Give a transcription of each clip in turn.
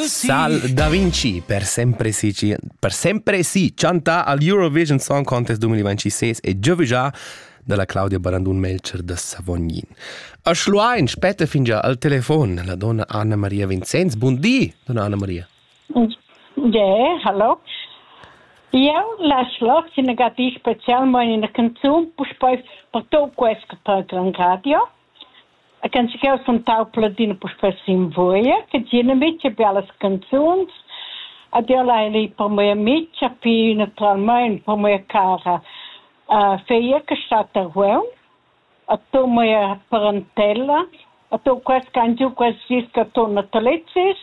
Sal da Vinci per sempre si, per sempre si chanta al Eurovision Song Contest 2026 e gioviggia dalla Claudia Barandun Melcher da Savognin. A Schluein spetta fingià al telefon la donna Anna Maria Vincenz. Bun di, donna Anna Maria. Yeah, hallo. Eu la schloc si negativ specialmain in canzun puspei per tot quest che parla in radio. E can chi ch'eu sentau Pladina puspè sin vouia, che dieuna micha bellas canzuns ed eu l'haja lit per mia micha, pii natüralmaing per mia cara feia che stat a Rueun, a to mia parentella, a to quels ch'han giü quels dis ch'a turna Turitg is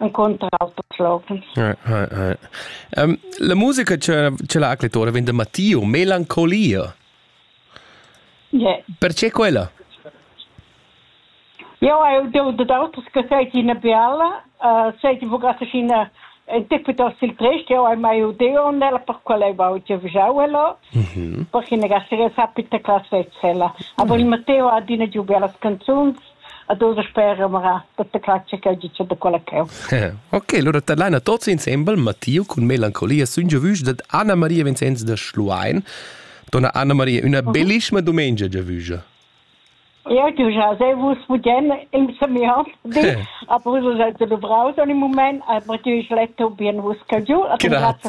encunter auters loghens. Right, right, right. Um, la musica che, che la acclettora vende Matteo, melancolia. Yeah. Perché quella? Jo, eu de d'autos que seit ina biala, uh, seit vogat ina en tipe del siltrest, eu ai mai udeo nella per quella e vau te vjauelo, mm perché ne gasse sapita classe eccella. Aber il Matteo ha adina giù belle canzoni, a tuts spera mara tutta claccia che giu da quella cheu. Ok, allora tadlaina tots insembel Matteo cun melancolia sun giavüs dad Anna Maria Vincenz da Schluein. Donna Anna Maria, una mhm. bellissima domenica giavüja. Ja, du hast sehr wusst, wo denn im Semiat die, aber so sind sie du brauchst im Moment, aber du hast letto bien, was kannst du, aber du hast